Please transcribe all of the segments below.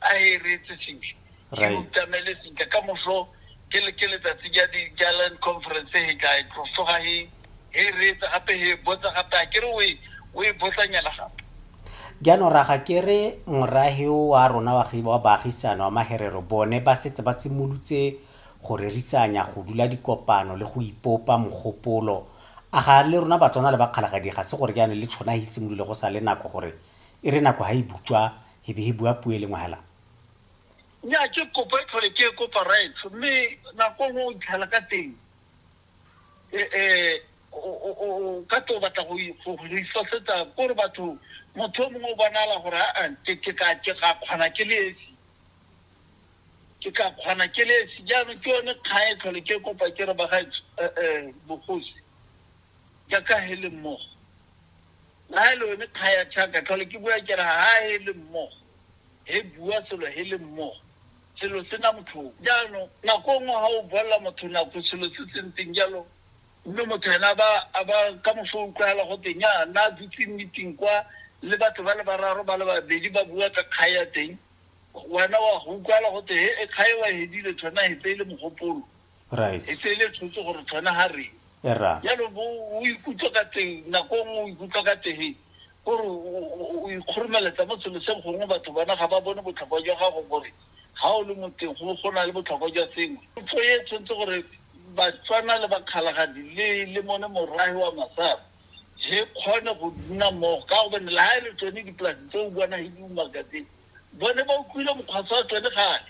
a e reetse sentle ke Right. utamele sentle ka moso ke le- ke letsatsi ja di- ja land conference he ka e tlosoga he he e reetsa gape he e botsa gape a kere o e o e botsanyana gape jaanong raga ke re morahi wa rona wa gi- wa baagisano wa maherero bone ba setse ba simolotse go rerisanya go dula dikopano le go ipopa mogopolo a ga le rona batswana le bakgalagadi ga se gore jaanong le tshwana e simolole go sa le nako gore e re nako ga e butswa he be he bua puo e le ngwe hela. Nnyaa, ke kopo e tlhole ke e kopa Raetsho, mme nako nngwe o itlhela ka teng o ka tlo batla go ifosetsa kore batho motho o mongwe o bonala gore aa ke ka kgona ke le esi, ke ka kgona ke le esi. Jaanong ke yone kgang e tlhole ke e kopa ke re bagaetsho bogosi jaaka he le mmogo. Nae lo yone kga ya Chaka, tlhole ke bua ke re ha he le mmogo, he bua selo he le mmogo, selo se na motlhoko. Jaanong, nako e nngwe ha o bolelela motho nako selo se se ntseng jalo, mme motho ene a ba, a ba, ka moso o utlwagala gote, nnyaa, nna a dutse meeting kwa, le batho ba le bararo, ba le babedi ba bua ka kga ya teng, wena wa go utlwagala gote, he, kga e wa e hedile, thona he tse e le mogopolo. e tse le tshotse gore tshwana ha re jalo o ikutlwa ka teng nako e nngwe o ikutlwa ka teng gore o ikgoromeletsa mo selo se gongwe batho bona ga ba bone botlhokwa jwa gago gore ga o le moteng go go na le botlhokwa jwa sengwe tso e tshwanetse gore batswana le bakgalagadi le le mone morahi wa masara re kgone go nna mmogo ka go bone le ga e le tsone dipolasi tse o bona he di umakateng bone ba utlwile mokgwasa wa tsone gale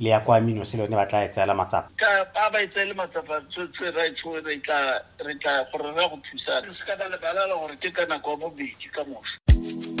le ya kwa Minos le yone ba tla e tseela matsapa? Ka, a ba e tseele matsapa, tse, tse, ra etsho, re tla, re tla, gore re ya go thusana. Re se ka ra lebala gore ke ka nako ya bobedi ka moso.